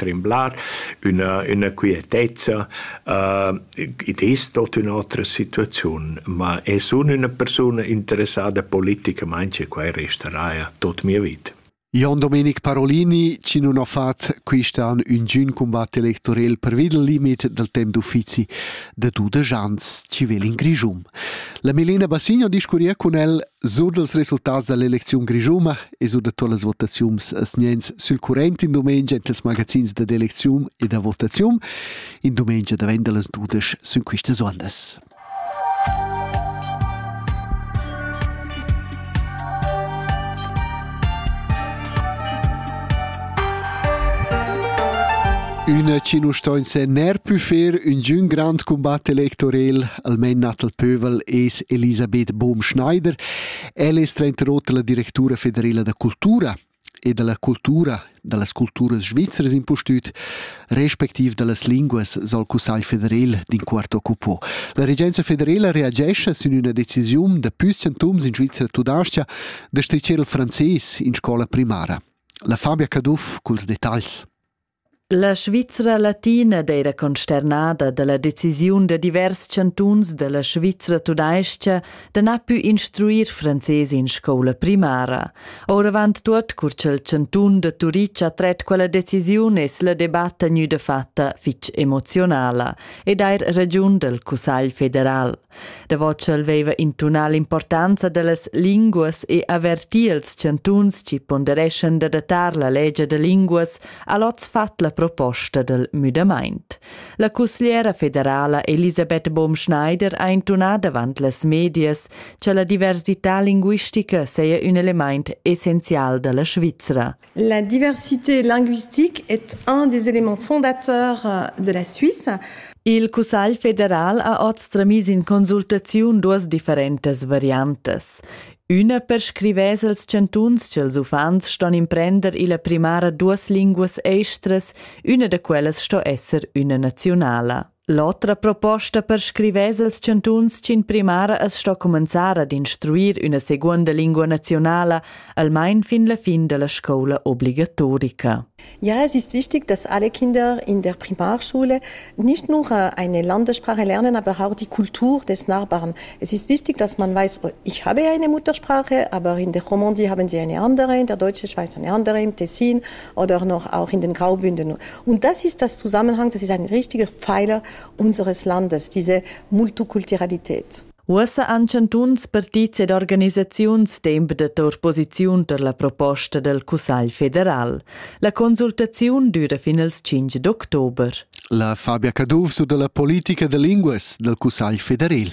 tremblar, üna, üna quietezza. Uh, id es tot ün'otra situaziun, ma e sun üna persuna interessada politicamaing e quai restaraja tot mia vita. Jon Domenic Parolini, chi non ho fat quist'an ün giun combat electorel per vid il limit del temp d'uffizi de dudesch ans chi vel in Grischum. La Melina Bassigno discurria cun el sur dels resultats dell'eleziun grischuma e sur da todas las votaziuns sniens sül current in dumengia in tals magazins da d'elecziun e da votaziun. In dumengia davent da las dudesch sun quistas ondas. Üna chi nu sto in se ner pü fer ün giün grand combatt electorel, almain natal pövel, es Elisabeth Bohm-Schneider, Ella es trainter oter la directura federela da cultura e da la cultura da las culturas svizras impustüt, respectiv da las linguas sa'l Cussagl federel d'inquart occupò. La regenza federela reagescha sün üna decisiun da püssentums in Svizra tudascha da stricher il frances in scola primara. La Fabia Caduff culs detagls. La Svizra latina d'eira consternada da la decisiun da divers chantuns da la Svizra tudais-cha da na pü instruir frances in scoula primara. Ouravant tuot cur cha'l chantun da Turitg ha tret quella decisiun es la debatta gnüda fatta fich emozionala ed eir ragiun dal Cussagl federal. Davo ch'el veva intunà l'importanza dallas linguas e averti els chantuns chi pondereschan d'adattar la legia da linguas, ha l'hoz fat la proposta dal müdamaint. La cussgliera federala Elisabeth Baumschneider ha intunà davant las medias cha la diversità linguistica saja ün elemaint essenzial da la Svizra. La diversité linguistique est un des éléments fondateurs de la Suisse. Il Cussagl federal ha oz tramis in consultaziun duas differentas variantas. Üna perscrivess als chantuns ch'ils uffants ston imprender illa primara duas linguas estras, üna da quellas sto esser üna naziunala. L'otra proposta per scrivers els chantuns ch'in primara as sto cumenzar ad instruir üna seguonda lingua nazionala almain fin la fin da la scoula obligatorica. Ja, es ist wichtig, dass alle Kinder in der Primarschule nicht nur eine Landessprache lernen, aber auch die Kultur des Nachbarn. Es ist wichtig, dass man weiß, ich habe eine Muttersprache, aber in der Romandie haben sie eine andere, in der deutschen Schweiz eine andere, im Tessin oder noch auch in den Graubünden. Und das ist das Zusammenhang, das ist ein richtiger Pfeiler unseres Landes, diese Multikulturalität. Uossa han chantuns, partits ed organisaziuns temp d'opposiziun per la proposta dal Cussagl federal. La consultaziun düra fin als 5 d'october. La Fabia Caduff su da la politica da linguas dal Cussagl federal.